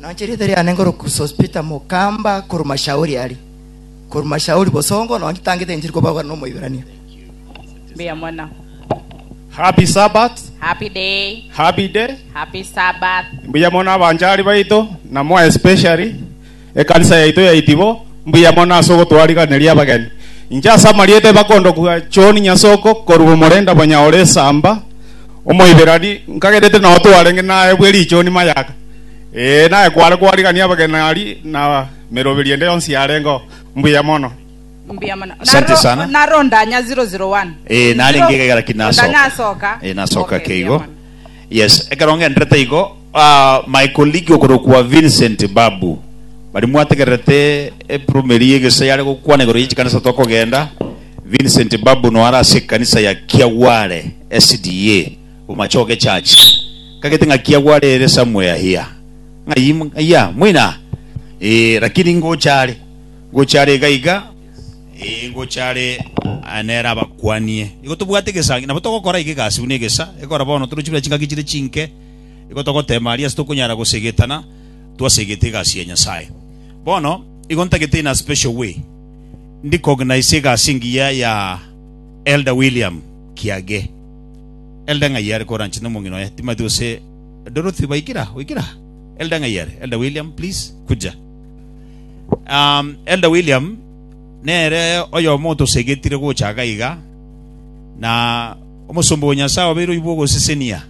Nanche rieta riane ngoroku Sospeter Mukamba korwa Mashauri aria korwa Mashauri Bosongo nonye tangete enchiri kobarwa no Moiberania. Mbuya mono. Happy Sabbath, Happy day. happy day. Happy Sabbath. Mbuya mono abanchari baito na more especially ekanisa yaito ya Itibo. Mbuya mono ase ogotwariganeria abageni. Inche ase amarieta bakondokwa John Nyasoko korwa Omorenda Bonyaore Esamba, Omoiberani nkagerete nao twarenge naye bwe richoni mayaka. Ee, naye kware kwarigania abagenari na meroberi ende yonsi yarengeo. Mbuya mono. Mbuya mono. Asante Naro- sana. Naro ndanya 001. Eh, nari Zero- ngigegera ki nasoka. Ndanya asoka. Eh, nasoka Okay, ke igo mbuya mono. yes ekero ngenderete igo ah, my colleague okorokwa vincent babu bari mwategererete epromeri egese yare gokwana igoro ya chikanisa tokogenda vincent babu noara ase ekanisa ya kiagware sda Omachoke church kagete ng'a kia gwarere somewhere here ng'a iya mwina eh lakini ngochare ngochare iga iga eh ngochare ah, nera abakwanie igo tobwate gesangi nabo togokora ige gasi buna egesa ekora bono torochi buna chingaki chire chinke igo togotema aria tokonyara gosegetana twasegete egasi ya Nyasaye bono igo ntagete in a special way ndi cognize egasi engiya ya Elder William Kiage Elde ng'ai are koranche nomong'ina oye? Timothy gose Dorothy baikire aha, oikire aha. Elde ng'ai are? Elde William, please, kuja. Um, Elde William, nere oyomo otosegetire gocha iga iga, na omosomba o Nyasae obeire oibwa ogosesenia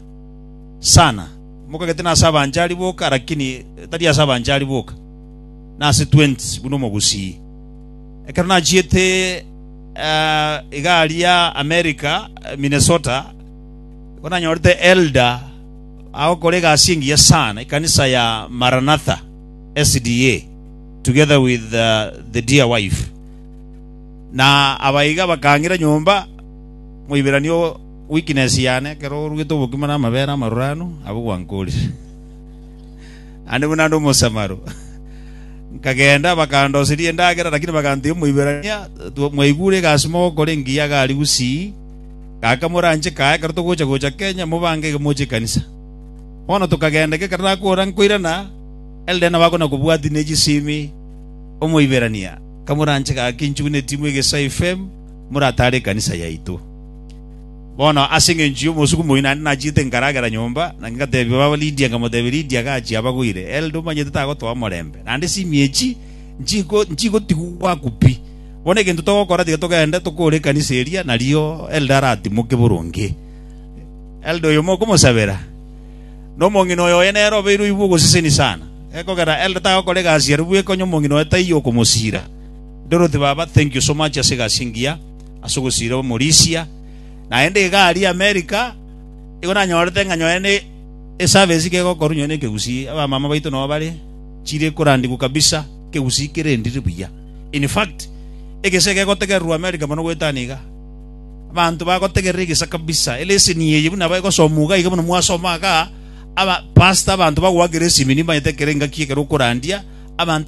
sana. Mokagete nase abanchari boka, lakini tari ase abanchari boka. Nase 20 buna omogusii. Ekero nachiete eh, egari ya America, eh, Minnesota, igo nanyorete elder agokora egasi engiya sana ekanisa ya Maranatha SDA together with uh, the dear wife na abaiga bakang'ira nyomba moibirani o weakness yane ekero orugete obokima na amabere amaruranu abwo gwankorire naende buna nde Omosamaro. Nkagenda, bakandoseria endagera, lakini baganteebia Omoiberania, Mwaigure egasi mogokora engiya iga aria gusii, gaka moranche kaye ekero togocha gocha Kenya, mobange iga moche ekanisa. Bono tokagenda iga ekero nakora nkoirana, elde nabo akona kobwati ne chisimi Omoiberania, Kamoranche gaki nchugunetie mwe egesaifem, moratare ekanisa yaito. Bono ase engencho y'omosuku moyio naende nachiete nkaragera nyomba, na ngatebia baba Lidia, nkamotebia, Lidia gachia abagweire, elde omanyete tagotoa omorembe, naende chimiechi nchiko nchigotigwa ogwaku pi. Bono egento togokora tiga togende tokore ekanisa eria, nario elde aratimoke boronge. Elde oyo mokomosabera, na omong'ina oyo oye nere obeire oibwa ogoseseni sana, gekogera elde tagokora egasi arabwo ekonye omong'ina oye taiyo okomosira. Dorothy baba, thank you so much ase egasi engiya. ase ogosiira Omorisia, naende iga aria Amerika, igo nanyorete ng'a nonye ne eservice iga egokorwa nonye nekegusii, abamama baito nao bare, chire korandigwa kabisa, ekegusii kerendire buya. In fact, egese gegotegererwa Amerika mono goeta aane iga. Abanto bagotegerera egesa kabisa, eleseni eye buna egosomwa iga iga buna mwasoma igaa, aba pastor abanto bagoakera esimi nimbanyete ekero engaki ekero okorandia, abanto